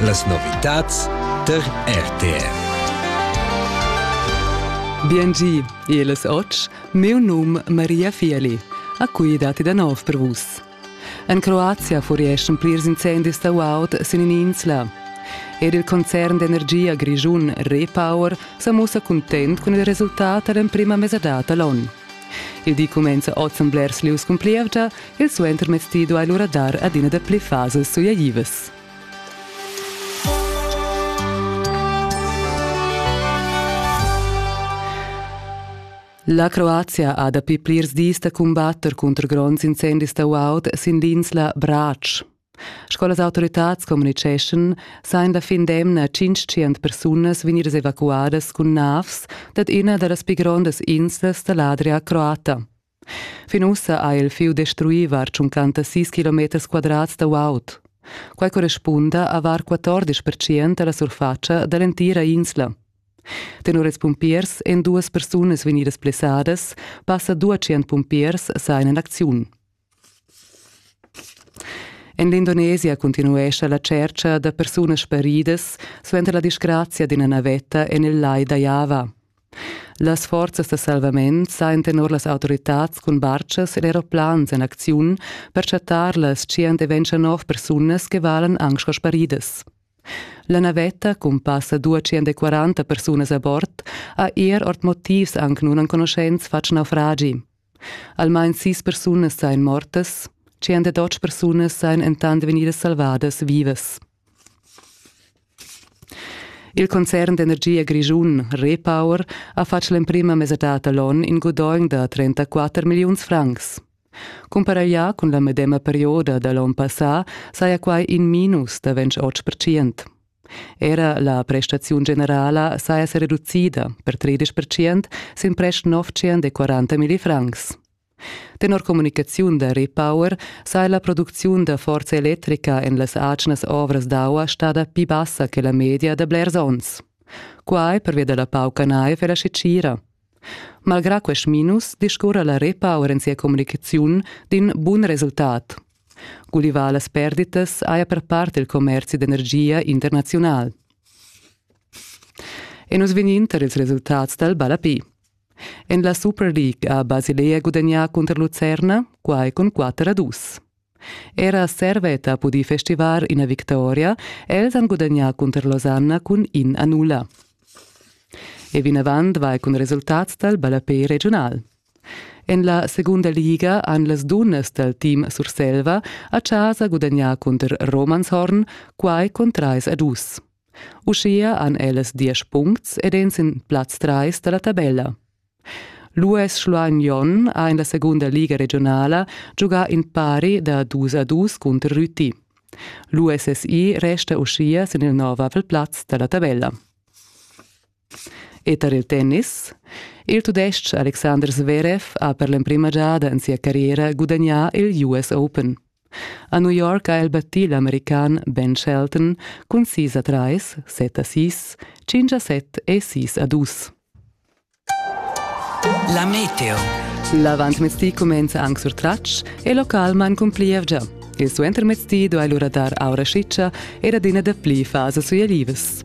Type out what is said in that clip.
Las novitads tar RTR. Biengi, el es och, meu num Maria Fieli. A cui dati da nov per vus. En Croazia furieschan plirs incendis da Waut sin insla. Ed il concern d'energia grischun Repower sa mussa content cun il resultat dall'emprima mesadad da l'on. Il di cumenza oz en blers lieus cun plievgia Il suentermezdi duai lura dar adina dapli fasas sujaivas. La Croazia ha dapi plirs dis da cumbatter cunter gronds incendis da guaud sin l'insla Brač. Sco las autoritads communiceschan, sajan la fin d'emna 500 persunas vegnidas evacuadas cun navs dad ina da las pi grondas inslas da l'Adria croata. Fin ussa ha il fieu destruì var 56 kilometers quadrats da guaud. Quai correspunda a var 14 percent da la surfatscha da l'entira insla. Tenor ils pumpiers èn duas persunas vegnidas blessadas, passa 200 pumpiers sain en acziun. En l'Indonesia continuescha la tschercha da persunas sparidas suenter la disgrazia d'ina navetta en il lai da Java. Las forzas da salvament sajan tenor las autoritads cun bartgas ed aeroplans en acziun per chattar las 129 persunas che valan anc sco sparidas. La navetta cun passa 240 persunas a bord ha er ord motivs anc nunenconuschents fatg naufragi. Almain sis persunas sain mortas, 108 persunas sain entant vegnidas salvadas vivas. Il concern d'energia grischun Repower ha fatg l'emprima mesadad da l'onn in gudogn da 34 milliuns francs. Cumparaglià cun la medema perioda da l'onn passà saja quai in minus da 28 percent. Era la prestaziun generala saja sa reducida per 30 percent sin prest 940 milli francs. Tenor communicaziun da Repower saja la producziun da forza electrica en las atgnas ovras d'aua stada pli bassa che la media da blers onns. Quai pervia da la pauca naiv e la scitgira. Malgrà quest minus discurra la Repower en sia communicaziun d'in bun resultat. Gulivà las perditas haja per part il commerzi d'energia internaziunal. E nus vegnin tar ils resultats dal Balapi. En la Superliga ha Basilea gudagnà cunter Lucerna, quai cun 4 a 2. Era Servet ha pudì festivar ina victoria, els han gudagnà cunter Losanna cun in a nulla. E vinavant vai cun resultats dal ballapé regiunal. En la segunda liga han las dunnas dal team Surselva a chasa gudagnà cunter Romanshorn, quai cun 3 a 2. Uschia han ellas diesch puncts ed èn sin plaz trais da la tabella. L'US Schluein Jon ha en la segunda liga regionala giugà in pari da dus a dus cunter Rüti. L'USSI resta uschia sin il nov avel plaz da la tabella. E tar il tennis? Il Tudestg Alexander Zverev ha per l'emprima giada en sia carriera gudagnà il US Open. A New York ha el battì l'american Ben Shelton cun 6 a 3, 7 a 6, 5 a 7 e 6 a 2. La meteo. L'avantmezdi cumenza anc sur tratsch e local man cun plievgia. Il suentermezdi duai lura dar aura schitscha ed adina dapli fasa sui alivas.